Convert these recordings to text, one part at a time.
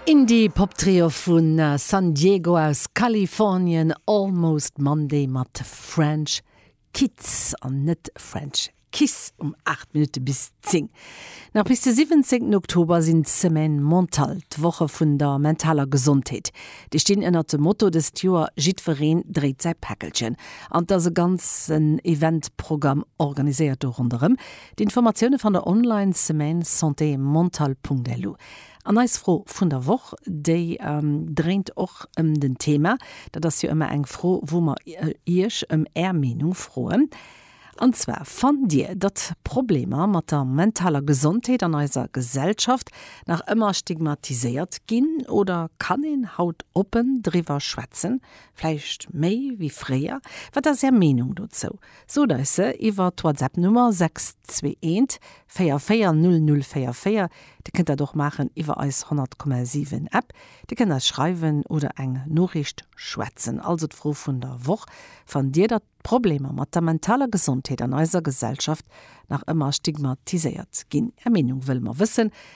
Indie-Pop-Trio vu San Diego aus Kalifornien, Almost Monday mat French Kids, an net French Kiss, um 8 Minutte bis 10. Nach bis de 17 Oktober sinn d'Semaines Mentales, d'Woche vun der mentaler Gesondheet. Déi stinn ënnert dem Motto dëst Joer Jiddwereen dréit säi Päckelchen. An et ass e ganzen Event-Programm organiséiert do ronderëm. D'Informatioune fannt der online, Semaine Santé Mentale.lu. An eis Fro vun der Woch, déi dréint och ëm den Thema, dat ass jo ëmmer eng Fro, wou mer Iech ëm Är Meenung froen. An zwar, Fannt Dir, datt Problemer mat der mentaler Gesondheet an eiser Gesellschaft nach ëmmer stigmatiséiert ginn oder kann een haut oppen driwwer schwätzen, vläicht méi wéi fréier? Wat ass Är Meenung dozou? Sot eis se iwwer d'Whatsapp Nummer 621440044, Dir kënnt dat och maachen iwwer eis 100,7 App. Dir kënnt eis schreiwen oder eng Noriicht schwätzen. Also d'Fro vun der Woch, Fannt Dir datt d'Problemer mat der mentaler Gesondheet an eiser Gesellschaft nach ëmmer stigmatiséiert ginn? Är Meenung wëlle mer wëssen.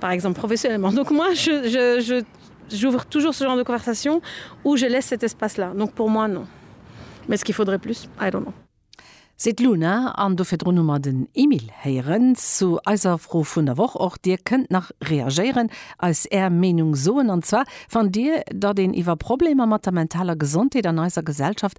Par exemple, professionnellement. Donc moi, je, je, je, j'ouvre toujours ce genre de conversation ou je laisse cet espace-là. Donc pour moi, non. Mais est-ce qu'il faudrait plus? I don't know. Seet d'Luna, an do virdrun hu mer den Emile héieren zu eiser Fro vun der Woch. Och Dir kënnt nach reagéieren, eis Är Meenung soen. An zwar, Fannt Dir, datt een iwwer Problemer mat der mentaler Gesondheet an eiser Gesellschaft